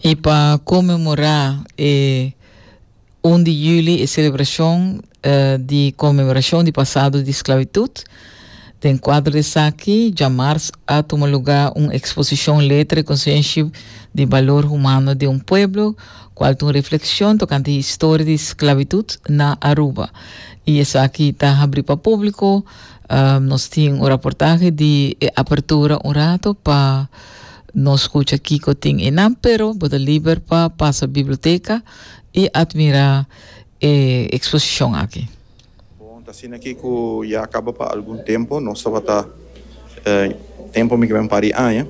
I pa konmemorá e un di juli, e selebrashon di konmemorashon di pasado di sklabitut, den kuadro di esaki djamars a tuma lugá un eksposishon Letra e Konsenshi di Balor Humano di un Pueblo, kual ta un reflekshon tokante historia di sklabitut na Aruba. I esaki ta habrí pa públiko. Nos tin un raportahe di e apertura un rato pa. No scucha kico tin e nan, pero bo ta liber pa pasa biblioteca y admira e exposicion aki. Bon, ta asina ki cu ya caba pa algun tempo. Nos tabata tempo mi cabe un par di aña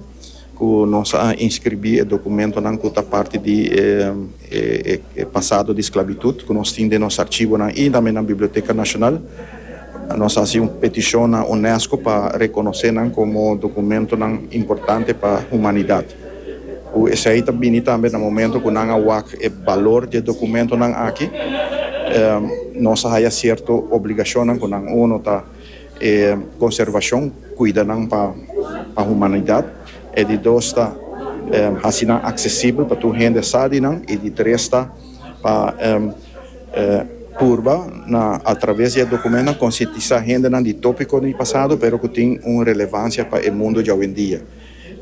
cu nos a inscribi e documentonan cu ta parti di e pasado di sclabitud cu nos tin den nos archibonan y tambe na Biblioteca Nacional. Nos a hasi un petishon na UNESCO pa rekonosé nan komo dokumentonan importante pa humanidat, ku esei ta bini tambe na momento ku nan a wak e balor di e dokumentonan aki. Nos a haya sierto obligashonnan ku nan. Uno ta e konservashon, kuida nan pa humanidat. E di dos ta hasi nan aksesibel pa tur hende sa di nan. I di tres ta. pa purba na a traves di e dokumentonan konsientisa hendenan di topiko di pasado pero ku tin un relevansia pa e mundo djawendia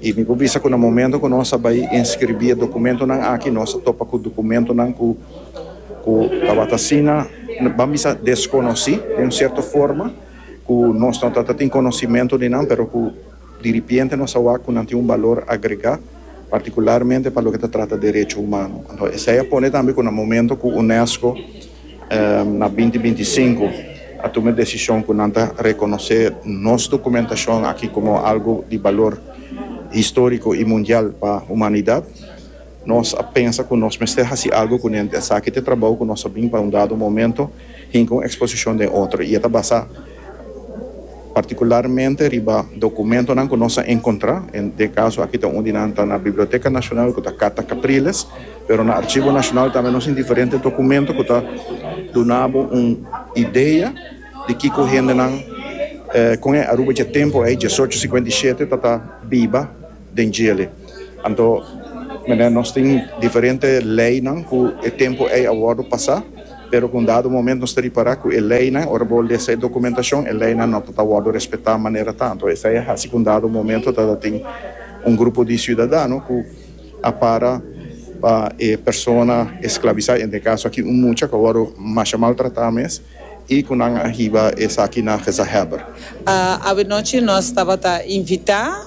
i mi por bisa ku na momento ku nos ta bai enskribí e dokumentonan aki nos ta topa ku dokumentonan ku ku tabata asina ban bisa deskonosí den un sierto forma ku nos no ta tin konosimentu di nan pero ku. Diripiente nos a wak ku nan tin un balor agregá, partikularmente pa loke ta trata derecho humano. Anto esei a pone tambe ku na momento ku UNESCO na binti binti i sinku a tuma e desishon ku nan ta rekonosé nos dokumentashon aki komo algu di balor históriko i mundial pa humanidat, nos a pensa ku nos mester hasi algu ku nenti. Esaki ta e trabou ku nos a bin pa un dado momento hinka un eksposishon den otro i e ta basá. partikularmente riba dokumentonan ku nos a enkontrá, en e kaso aki ta un di nan ta na Biblioteka Nashonal ku ta Carta Capriles, pero na Arshivo Nashonal tambe nos tin diferente dokumento ku ta duna bo un idea di kiko hendenan kon e Aruba dje tempu ei, diesocho sikuenta i shete, ta ta biba. den djele. Anto mene nos tin diferente leynan cu e tempo ey a wordo pasa, pero cu un dado momento nos ta ripara cu e leynan, ora bo lesa e documentacion, e leynan no ta ta wordo respeta manera ta. Anto esey a haci cu un dado momento ta ta tin un grupo di ciudadano cu a para pa e persona esclavisa, en e caso aki un mucha cu a wordo masha maltrata mes. I ku nan a hiba esaki na gezagheber. Avenochi nos tabata invitá,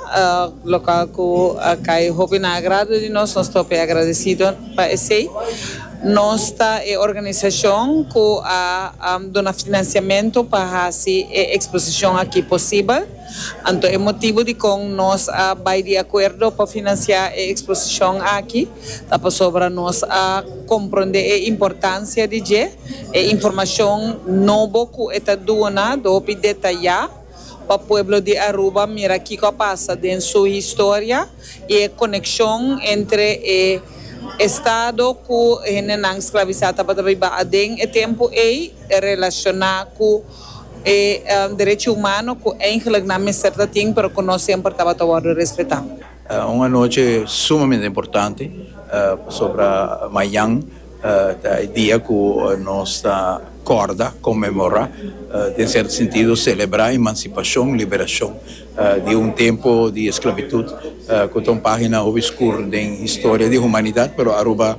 lokal ku a kai hopi na agrado di nos, nos ta hopi agradesido pa esei. Nos ta e organisashon ku a duna finansiamentu pa hasi e eksposishon aki posibel. Anto e motibu dikon nos a bai di akuerdo pa finansiá e eksposishon aki. Ta pasobra nos a komprondé e importansia di dje, e informashon nobo ku e ta duna hopi detayá pa pueblo di Aruba mira kiko a pasa den su historia i e konekshon entre e estado ku hendenan sklabisá tabata biba aden e tempu ei relashoná ku e derechi humano ku eigenlik nan mester ta tin pero ku no semper tabata wòrdu respetá. Un anochi sumamente importante, pasobra mañan ta e dia ku nos ta kòrda, konmemorá, den sierto sentido selebrá emansipashon, liberashon, di un tempu di esklabitut ku ta un página hopi skur den historia di humanidat, pero Aruba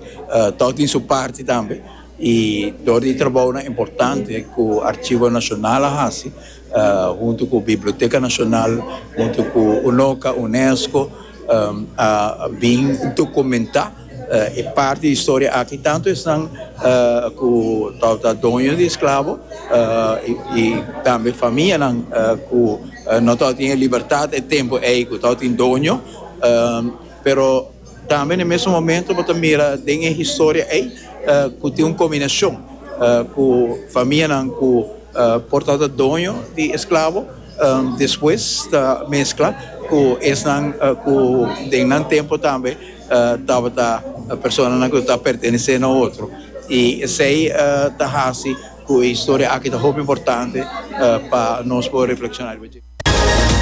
tòg tin su parti tambe i dor di trabounan importante ku Archivo Nacional a hasi, huntu ku Biblioteka Nashonal, huntu ku UNOCA, UNESCO, a bin dokumentá e parti di historia aki, tantu esnan ku tabata ta doño di esklabo i tambe famianan ku no tabata tin e libertat e tempu ei ku tabata tin doño, pero tambe na e mesun momento bo ta mira den e historia ei ku tin un kombinashon ku famianan ku. Por tabata doño di esklabo, despues ta meskla ku esnan ku den nan tempu tambe tabata personanan ku ta pertenesé na otro. I esei ta hasi ku e historia aki ta hopi importante pa nos por reflekshoná riba dje.